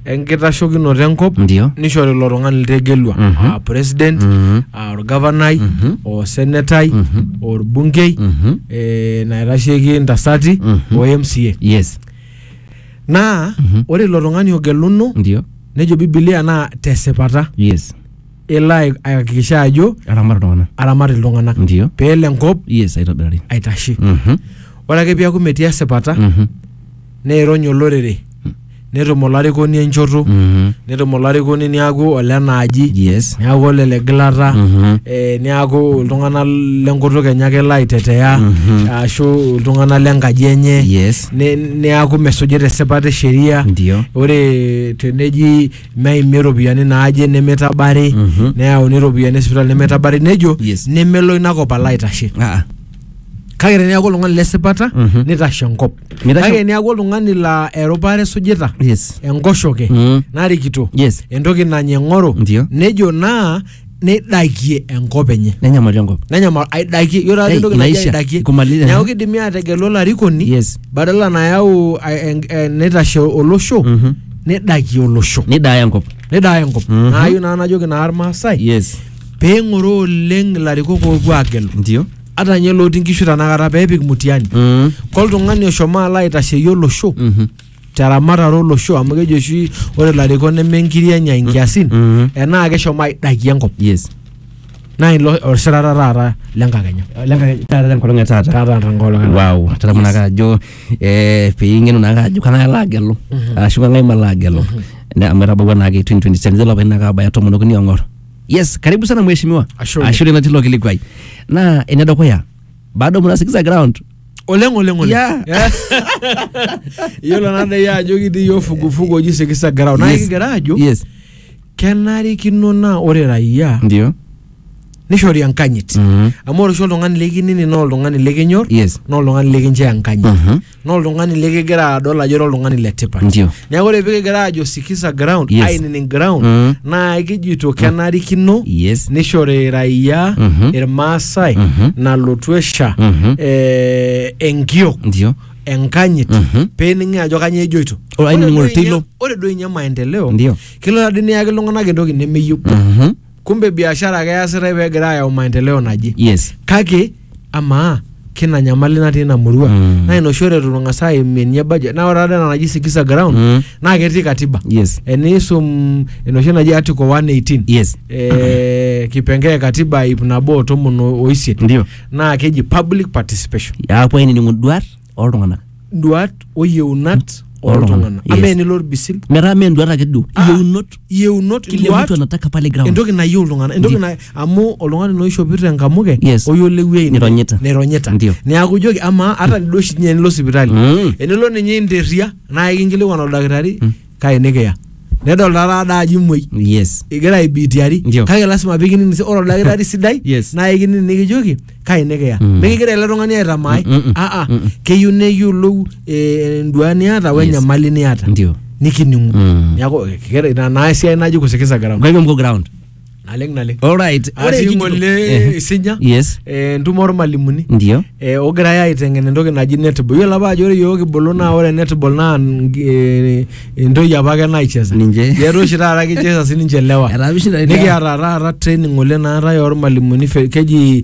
enkitashokinoto enkop Ndio. nishori ilo tung'ani litegelua Mhm. aa president Mhm. aa orgavanai Mhm. o senetai Mhm. orbunkei Mhm. eh, naitasheki intasati Mhm. o mca Yes. naa Mhm. ore ilo tung'ani ogeluno Ndio. nejo bibilia naa tesipata Yes. elo ai- aihakikisha ajo Aramat iltung'anak. aramat iltung'anak Ndio. peelo enkop Yes, aitobirari. aitashe Mhm. ore ake piaku metii esipata Mhm. neirony olorere netum olarikoni enchoto Mhm. netum olarikoni niaku olena aji Yes. niaku ole le gilata Mhm. eh, niaku iltung'anak lenkutuk enye ake elo aitetea Mhm. ashu iltung'anak lenkaji enye Yes. ne- niaku mesujita esipata e sheria Ndio. ore teneji meimi iropiyiani naaje nemeitabari Mhm. neyauni iropiyiani esipitali nemeitabari nejo Yes. nemelo inakop alo aitashe Ah, ah. kake teneaku oltung'ani lesipata Mhm. nitashe enkop Mitashe- kake teneaku oltung'ani laa erupare esujita yes enkoshoke Mm. narikito yes entoki nanya eng'oro Ndio. nejo naa neidakie enkop enye nenyamali enkop nenyamal aidakie yiolo taata Ei, entoki naji inaisha, aidakie kumaliza, neeku eh. kidimi aategelu olarikoni yes badala nayau a- en- en- neitashe olosho Mhm. nidakie olosho nidaaya enkop nidaaya enkop Mhm. naayieu naa najoki naa irmaasai yes pee ing'oroo oleng ilarikok oopuo aagelu ndio ata ninye looti nkishu tanakata pee epik mutiani mm. koltung'ani oshomo alo aitasheyie olosho Mhm. teramatare olosho amu keji oshi ore ilarikok neme nkiri enya inkiasin Mhm. enaa keshomo aidakie enkop yes naa ilo osirata taata lenkakenya taata tenkolong e taata taata tenkolong e- wow tadamu naake ajo eh, piing'enu naake ajo kang'ae alo agelu ashu kang'ae malo agelu Ne- amu etabawua naake 2027 lelo apaitin naake abaya tomon okuni ong'or yes karibu sana mheshimiwa Ashe oleng. ashule natii ilo kilikuai naa enedukuya bado mnasikiza ground oleng oleng oleng Yeah. Yeah. iyiolo nadai ajo kitii iyiok fugufugu oji sikisa ground naa Yes. kigira ajo yes kenarikino naa ore raia ndio nishori enkanyit Mhm. amu ore oshi oltung'ani likinini naa oltung'ani likinyor yes naa oltung'ani likinchoo enkanyit Mhm. naa oltung'ani likigira adol ajo ira oltung'ani le tipat Ndio. neeku ore pikigira ajo sikiza ground Yes. ainining ground Mhm. naa kijito kenarikino Yes. nishori raia Mhm. irmaasai Mhm. nalotu esha Mhm. eh, enkiok ndio enkanyit Mhm. pening'i ajo kanyoo ejoito Ore ainining'o Ore duo oltoilo. inye- ore duo inye maendeleo Ndio. kelo tadi niyaki iltung'anak entoki nemeyieu Mhm. kumbe biashara ake easitae pee egira ayau maendeleo naje yes kake amaa kina nyamali natii ina murua Mm. naa ina oshi ore itu tung'as aimie ninye budget naa ore taata ena naji sikiza ground Mm. naa ketii katiba yes eniisum enoshi naji article 118 yes eh, kipengee e katiba ip nabo o tomon o- oisiet ndio naa keji public participation apuo ainining'u duat oltung'anak duat o yieunat oltung'anak Yes. ama enilo orbisil metaa mee enduata ake duo Ah. iyieunot yieunot kile mtu duat anataka pale ground entoki nayieu iltung'anak entoki Ndi- na amu oltung'ani naa oishopito enkamuke Yes. oyiolo ewuei Nironyita. nironyita Ndio. neaku ijoki amaa ata duo oshi ninye enilo sipitali Mm. enilo ninye interria naa ikinkilikuan oldakitari kake nikiya nedol taata ada ajo imuoi yes igira aibitiari Ndio. kake lasima pikining si- ore oldakitari sidai Yes. naa ikining nikijoki kai nikiya Mm. mikigira ele tung'ani aitamaai Mm, mm, mm. aa Mm, mm. keyieu neyiolou eh, enduaa niata we Yes. enyamali niata ndio nikining'u Mm. neaku eh, kira- ina naa esiai naji kusikiza ground kake mko ground naleng naleng Alright. Ore atii ekijo- ng'ole Eh. isinya Yes. eh, entumo ormalimuni Ndio. eh, ogirai aiteng'en entoki naji netball yiolo apa ajo ore yiok kibulu naa ore netball naa n- eh, entoki apa ake naicheza Ninche. yetu oshi taata kicheza sininche lewa Etaa mishinda lewa. nikiata taata training ng'ole naatae ormalimuni fe- keji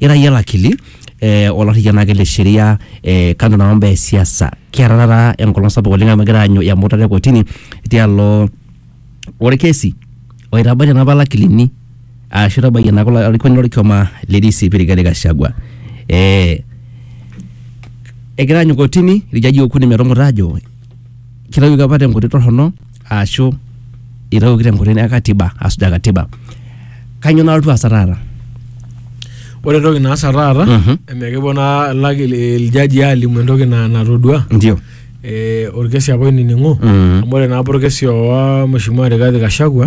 ira iyie olakili eh, olarriyia naake le sheria eh, kando na mambo ya siasa kiata taata enkolong sapuk oleng amu egira aanyu emutata e kotini tialo orkesi oitabaitie napa lakilini ashu itabayie napa olarikoni lorkioma le DCP Rigathi Gachagua eh, egira aanyu kotini irjaji okuni metumuta ajo kitawuoki apa tenkoitoi torrono aashu itawuoki tenkoitoi e katiba asujaa katiba kanyio nalotu aasa taata Ore entoki naasa taata Mhm. emekipuo naa laki iljaji aalimu entoki na- natodua ndio eh, orkesi apa oinining'o Mhm. amu ore naapa orkesi oowa Mheshimiwa Rigathi Gachagua